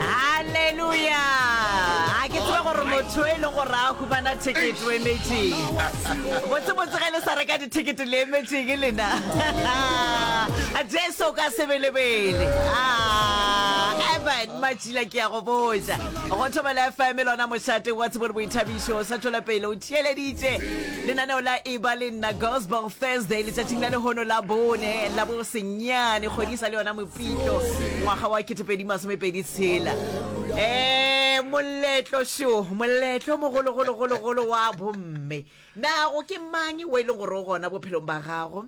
halleluja a ke tsebe gore motho e le gore a humana ticket o emetseng botsebotse ge le sa reka dithekete le emetseng lena jesu ka sebelebele evan matšila ke ya go boja go thobela fm lona mošate wa tsebore boithabišo sa tšwela pele o theeleditše lenaneo la eba le nna gospel thursday letšatšing la lehono la bone la bosenyane kgodisa le yona pitlo ngwaga wa ketepedi masomepedi tshela um moletlo sho moletlo mogologologologolo wa bomme nago ke mang wa e leng gore o gona bophelong ba gago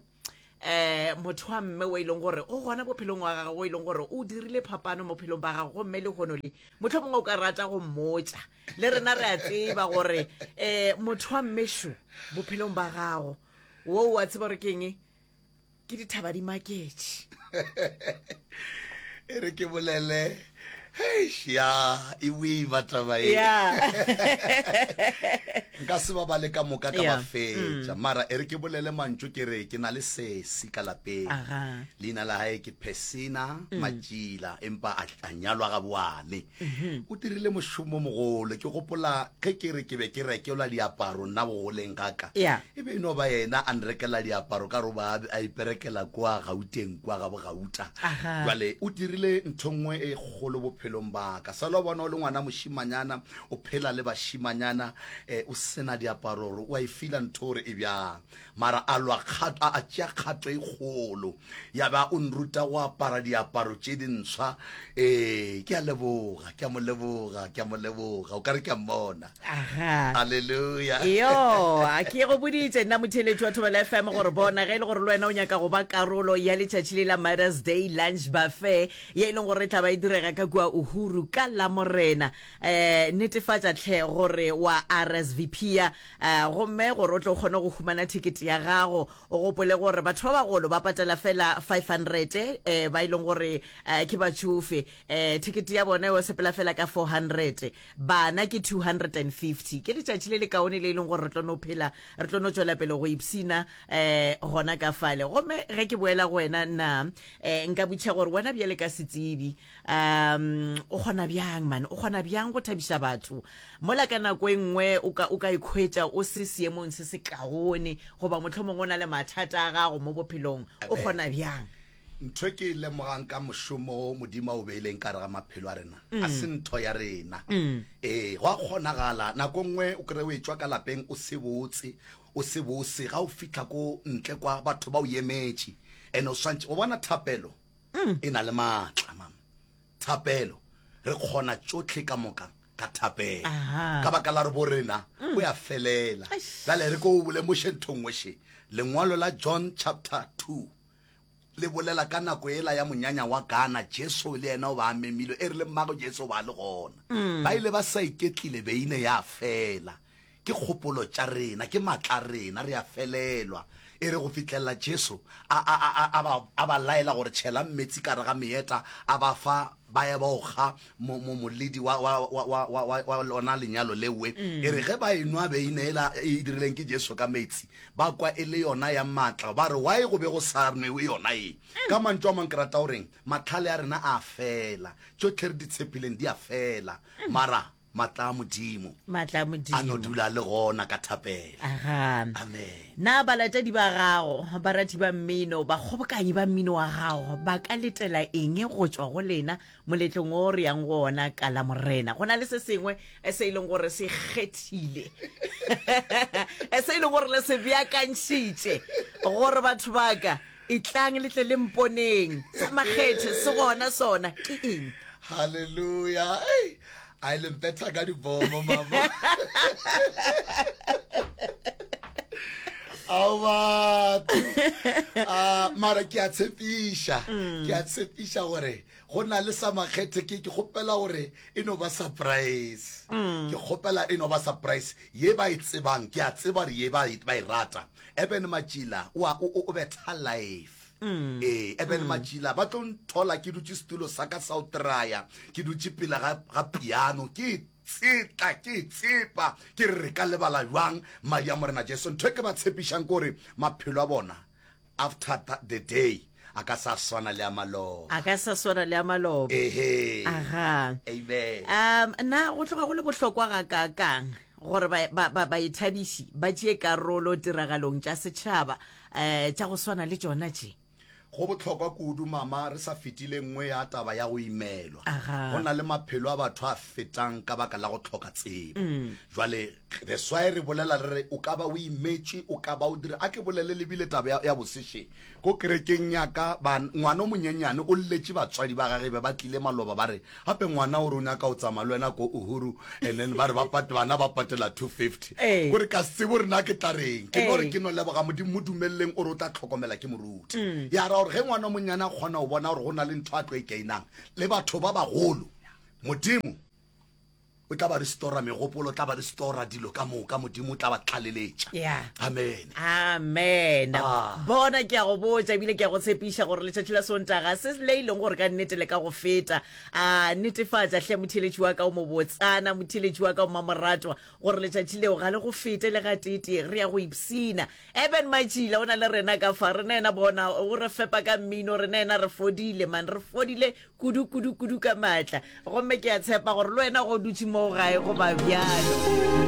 um motho wa mme wa e leng gore o gona bophelong wa gago e leng gore o dirile phapano mo phelong ba gago gomme le gono le motlho mongwe o ka rata go mmotsa le rena re a tseba gore um motho wa mmesho bophelong ba gago wo wa tseba gore ke eng ke dithaba di maketše e re ke bolele ya e boima taba e nka se ba bale ka moka ka ba fetša mm. mara e re ke bolele mantso ke re ke na le sesi ka lapeng leina la gae ke persina mm. matšila empa a nyalwa ga boane o dirile mošomo mogolo ke gopola ge ke re ke be ke rekelwa diaparo nna bogoleng ga ka Yeah. e be e no ba yena a nrekela diaparo ka gore ba a iperekela kwa gauteng kwa ga bogauta Aha. jale o dirile ntho nngwe e kgolo bophelong ba ka sala o bona o le ngwana mošimanyana o phela le bašimanyana um o sena diaparo gore o a e fila ntho gore e bjang Mara a lwa kgato, a, a tšea kgato e kgolo, ya ba o nruta go apara diaparo tše dintsha. Ee, ke a leboga, ke a mo leboga, ke a mo leboga. O ka re ke a mmona. Aha. Aleluya. Yo, ke go boditše nna motheletši wa Thobela FM gore bona ge e le gore le wena o nyaka go ba karolo ya letšatši le la Mothers Day Lunch Buffet ye e leng gore e tla ba e direga ka kua Uhuru ka Lamorena, eh, netefatša tlhe gore wa RSVPa A gomme gore o tle o kgone go humana thekete ya gago, o gopole gore batho ba bagolo ba patela fela 500, eh, ba e leng gore eh, ke batšofe, eh, thekete ya bona yo sepela fela ka 400, bana ke 250. Ke letšatši le le kaone le e leng gore re tlo no phela, re tlo no tšwela pele go ipsina eh, gona ka fale. Gomme ge ke boela go wena, na eh, nka butšha gore wena bjale ka setsebi, um o kgona bjang mane o kgona bjang go thabiša batho mola ka nako e nngwe o ka o ka ikhwetša o se seemong se se kaone goba motlho mongwe o na le mathata a gago mo bophelong o kgona bjang ntho e ke e lemogang ka mošomo o modimo a o beileng ka re ga maphelo a rena a mm. se ntho ya rena mm. ee go a kgonagala nako nngwe o kry o e tswa ka lapeng o se botse o se bose ga o fitlha ko ntle kwa batho ba o emetše and o swantšhe o bona thapelo mm. e na le maatla mam thapelo re kgona tšotlhe ka moka ka thapelo ka baka la re bo rena mm. o ya felela jale re ko o bole mošeng thongweshe lengwalo la john chapter 2 le bolela ka nako ela ya monyanya wa gana jesu le yena o ba memilwe e re le mmago jesu ba le gona mm. ba ile ba sa iketlile beine ya fela Ke kgopolo tša rena, ke matla a rena, re a felelwa. E re go fihlelela Jesu a, a, a, a, a, ba, a ba laela gore, Tšhelang meetse ka gare ga meeta, a ba fa, ba ya ba o kga mo, mo, moledi wa, wa, wa, wa, wa, wa, wa lona lenyalo lewe. E re ge ba e nwa beine yela e dirileng ke Jesu ka meetse, ba kwa e le yona ya matla, ba re, Why go be go sa nwewe yona ye? Ka mantšu a mang ke rata go reng? Mahlale a rena a a fela, tšohle re di tshepileng di a fela. Mara. Matla a Modimo. Matla a Modimo. A no dula le gona ka thapelo. Aga. Amen. Na balatedi ba gago, barati ba mmino, bakgobokanyi ba mmino wa gago ba ka letela eng go tšwa go lena moletlong o re yang go ona ka la Morena? Go na le se sengwe se e leng gore se kgethile se e leng gore le se beakantšhitše gore batho ba ka Etlang le tle le mponeng. Sa makgethe se gona sona ke eng? Hallelujah. Hey, a e le mpetha ka dibomo mama. ao batho ah, mara ke a tshepiša mm. ke a tshepiša gore go na le sa makgethe ke ke kgopela gore e no ba surprise mm. ke kgopela e no ba surprise ye ba e tsebang ke a tseba gore ye ba e, e rata Eben Matšila o a o o betha life Mm. ee eben mm. matšila ba tlo nthola ke dutše setulo sa ka sa o traya ke dutše pila ga, ga piano ke e tsetla ke e tsepa ke re re ka lebala jwang madi a morena jesu ntho e ke ba tshepišang kore maphelo a bona after the day A ka sa swana le a maloba. A ka sa swana le a maloba. Ehe. Aha. Amen. Um, na go tloga go le bohlokwa ga ka kang gore ba ba ba ba ithabiši ba tšee karolo tiragalong tša setšhaba eh tša go swana le tšona tše? Go bohlokwa kudu mama re sa fetile nngwe ya taba ya go imelwa. Aha. Go na le maphelo a batho a fetang ka baka la go hloka tsebo. Jwale that's why re bolela re re o ka ba o imetše, o ka ba o dira. A ke bolele lebile taba ya, ya bosešeng. Ko kerekeng ya ka, ba, ngwana o monyenyane o lletše batswadi ba gage, be ba tlile maloba, ba re, Gape ngwana o re o nyaka go tsamaya le wena ko Uhuru, and then ba re ba pat, bana ba patela two fifty. Ee. Ko re, Ka se tsebe gore na ke tla reng. Ke no re, Ee. Ke no leboga Modimo, mo dumeleleng, o re o tla tlhokomela ke moruti. Ya ra gore ge ngwana o monnyane a kgona go bona gore go na le ntho a tlo e gainang, le batho ba bagolo, Modimo, O tla ba restora megopolo, o tla ba restora dilo ka moka, Modimo o tla ba tlaleletša. Yeah. Amen. amen Ah. bona ke a go botša ebile ke a go tshepiša gore letšatši la sontaga se le e leng gore ka nnete le ka go feta a netefatša hle motheletši wa ka o mobotsana motheletši wa ka o mamoratwa gore letšatši leo ga le go fete le gatete re ya go ipsina eben matšila o na le rena ka fa rena ena bona o re fepa ka mmino rena ena re fodile man re fodile Kudu, kudu, kudu ka maatla. Gomme ke a tshepa gore le wena go dutše moo gae go ba bjalo.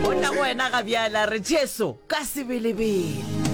Go tla go wena ga bjala, re Jesu, ka sebelebele.